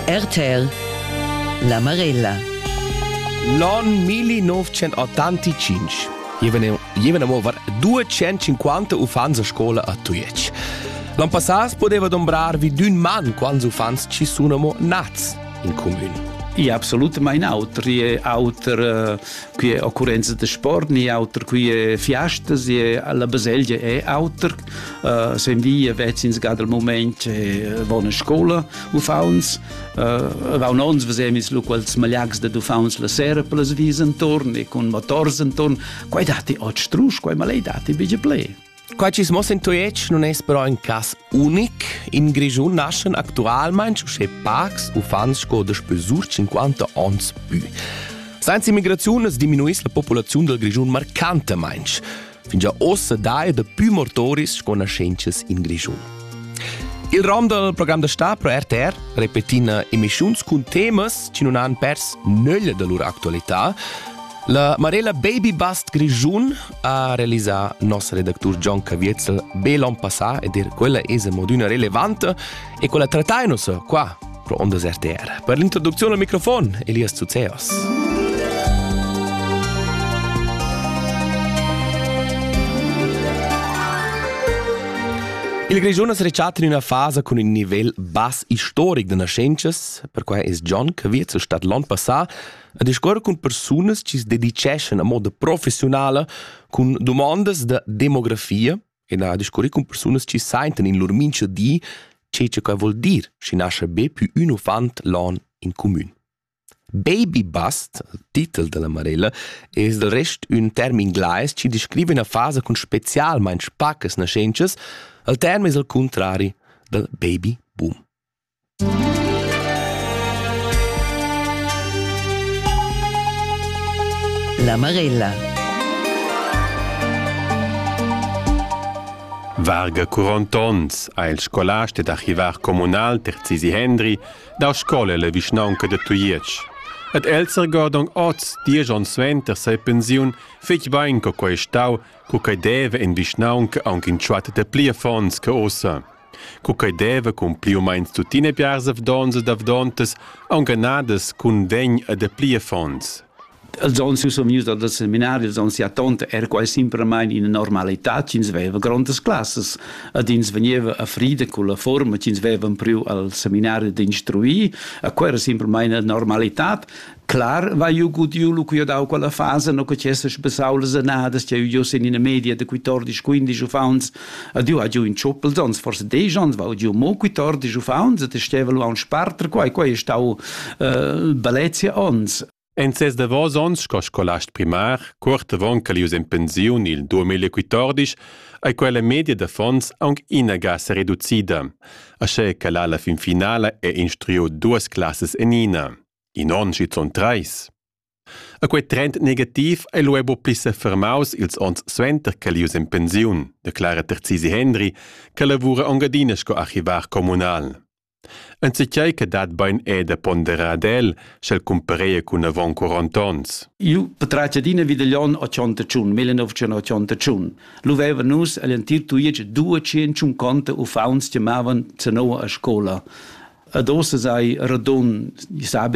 RTL La Marella L'on 1985 Jevene mo var 250 uffants a scola a Tujetsch. L'an passat poteva dombrar vi d'un man quants uffants ci sono mo nats in comune. E absolutamente auter. Qui è auter qui è occurenza de sport, ni auter qui è fiastas, la baselgia è auter. Uh, sen vi vets ins gad al moment e von scola uffauns uh, va un ons vesem is lu quels malags de uffauns la sera per las vis entorn e con motors entorn quai dati ot strusch quai malei dati bige ple Qua ci smo sen toiec non es però in cas unic, in Grischun naschen actualmein sche pacs uffants sco de spesur 50 ons pü. Sainz immigraziun es diminuis la populaziun del Grischun marcantemein. fingià ossa daja dapü mortoris sco naschentschas in Grischun. Il rom dal program da sta pro RTR repetina emischiuns cun temas chi nun han pers nöglia da lur actualità. La Marella Baby Bust Grischun ha realisà nossa redactur John Caviezel be l'on passà ed er quella esa mod üna relevanta E quella trattai nus qua, pro Ondas RTR, per l'introduzione al microfon, Elias Zuzeos. Il Grischun es rechat in üna fasa cun ün nivel bass istoric da nascentas, perquai es John, che viet zur Stadt l'on passà, a discuor cun persunas chi se dedicheschan a moda professionala cun domandas da demografia e na discurri cun persunas chi saintan in lur mincha di che che quai vuol dir, schi nascha be pü ün uffant lon in cumün. Baby bust, titel della Marella, es del rest ün term inglais chi descriva üna fasa cun specialmaing pacas naschentschas, al term es al cuntrari dal baby boom. La Marella. Varga curont onns ha il scolast ed archivar communal Terzisi Hendri da scola la vischnaunca da Tujetsch. Ed el sergordong oz, diesch onns suenter sei pensiun, fetg bein co quei stau, co quei deva in vischnaunca aunc in tschuat de pli affons che ossa. co quei deva cun pli u meins tuttina biars avdons ed avdontas aunghanadas cun vegn e dapli affons. Els onns io sun vgnius dal seminari, els onns sia tonta era quai simplamain ina normalitad ch'ins veva grondas classas ed ins vegniva a frida cun la forma ch'ins veva priu al seminari d'instruir e quella era simplamain una normalitad Clar vai jeu gudiu lu cu dau quella fasa no che cessas besau las annadas che jeu sin ina media de 14 15 uffants a du a giu in tschuppel sonst forse dei ans va giu mo 14 uffants et steva lu an sparter quai quai stau äh, balezia ons En ses davos onns sco scolast primar, cuort avon che ius en pensiun il 2014, ei quella media d'affons aunc inaga se reducida, asche che la fin finala è instruiu duas classes en ina. In onn schizunt trais. E quei trend negativ ei lu buca pli sefermaus ils onns suenter ch'el ius en pensiun, declara Terzisi Hendry, che lavura engadina sco archivar communal. Enzatgei che dat bein è da ponderar ad el, sch'el cumpareia cun avon 40 onns. Io patratgia d'ina vidaglion 81, 1981. Lu veva nus agl entir tuiec 250 uffants che mavan zanoa a scola. Ad ossa sei radun, sabe